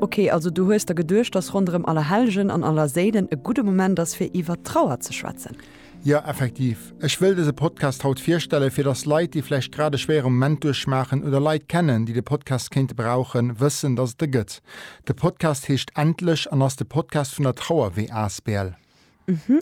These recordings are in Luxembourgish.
Ok, also du hues der geduecht, dass ronderëm Allerhellgen an Allerséilen e gudde Moment ass, fir iwwert d'Trauer ze schwätzen? Jo, effektiv. Ech wëll dëse Podcast haut virstellen, fir dass Leit, déi vläicht grad e schwéiere Moment duerchmaachen oder Leit kennen, déi de Podcast kéinte brauchen, wëssen, dass et e gëtt. De Podcast heescht Endlech an ass de Podcast vun der Trauerwee asbl.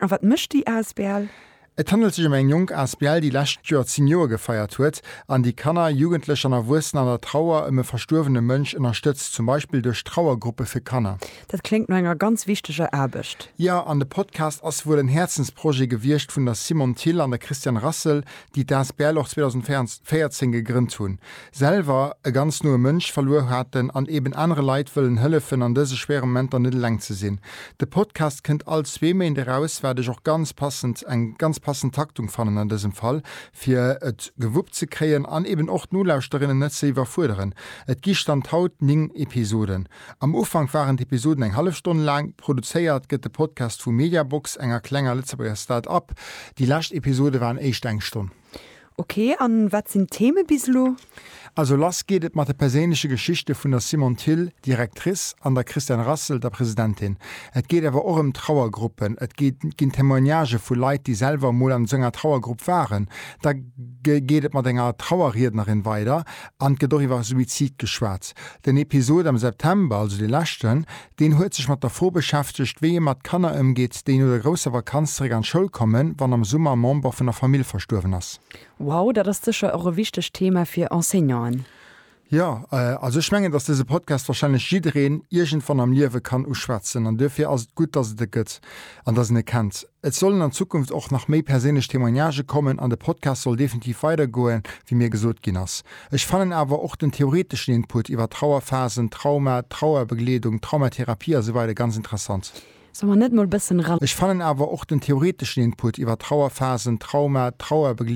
A wat mécht déi Asbl? Et handelt sech ëm eng jonk Asbl, déi lescht Joer 10 Joer gefeiert huet an déi Kanner, Jugendlech an Erwuessen an der Trauer ëm e verstuerwene Mënsch ënnerstëtzt, zum Beispill duerch Trauergruppe fir Kanner. Dat kléngt no enger ganz wichteger Aarbecht. Jo, an de Podcast ass wuel en Häerzensprojet gewiescht vun der Simone Thill an der Christiane Rassel, déi d'Asbl och 2014 gegrënnt hunn. selwer e ganz noe Mënsch verluer haten an eben anere Leit wëllen hëllefen an dëse schwéiere Momenter net eleng ze sinn. De Podcast kënnt all zwee Méint eraus, wat ech och ganz passend, eng ganz passend Taktung fannen an dësem Fall, fir et gewuppt ze kréien an eben och d'Nolauschterinnen net ze iwwerfuerderen. Et gi Stand haut 9 Episoden. Am Ufank waren d'Episoden eng hallef Stonn laang. Produzéiert gëtt de Podcast vu Mediabox, enger klenger Lëtzebuerger Start-up. Déi lescht Episode waren éischt eng Stonn. Ok, an wat sinn d'Theme bis elo? Also lass geet et mat de perséinleche Geschichte vun der Simone Thill, Directrice, an der Christiane Rassel, der Presidentin. Et geet awer och ëm Trauergruppen. Et ginn Témoignagë vu Leit, déi selwer emol an esou enger Trauergrupp waren. Da geet et mat enger Trauerriednerin weider an et gëtt och iwwer Suizid geschwat. Den Episod am September, also dee leschten, Deen huet sech mat der Fro beschäftegt, wéi ee mat Kanner ëmgeet, déi no der grousser Vakanz zeréck an d'Schoul kommen, wann am Summer e Member vun der Famill verstuerwen ass. Wow, dat ass sécher och e wichtegt Thema fir Enseignanten. Jo, also ech mengen, dass dëse Podcast warscheinlech jiddereen iergendwann am Liewe kann uschwätzen. An duerfir ass et gutt, dass et e gëtt an dass een e kennt. Et sollen an Zukunft och nach méi perséinlech Témoignage kommen an de Podcast soll definitiv weidergoen, wéi mir gesot ginn ass. Ech fannen awer och den theoreteschen Input iwwer Trauerphasen, Trauma, Trauerbegleedung, Traumatherapie a sou weider ganz interessant. Soll mer net mol bëssen. Ech fannen awer och den theoreteschen Input iwwer Trauerphasen, Trauma, Trauerbegleedung,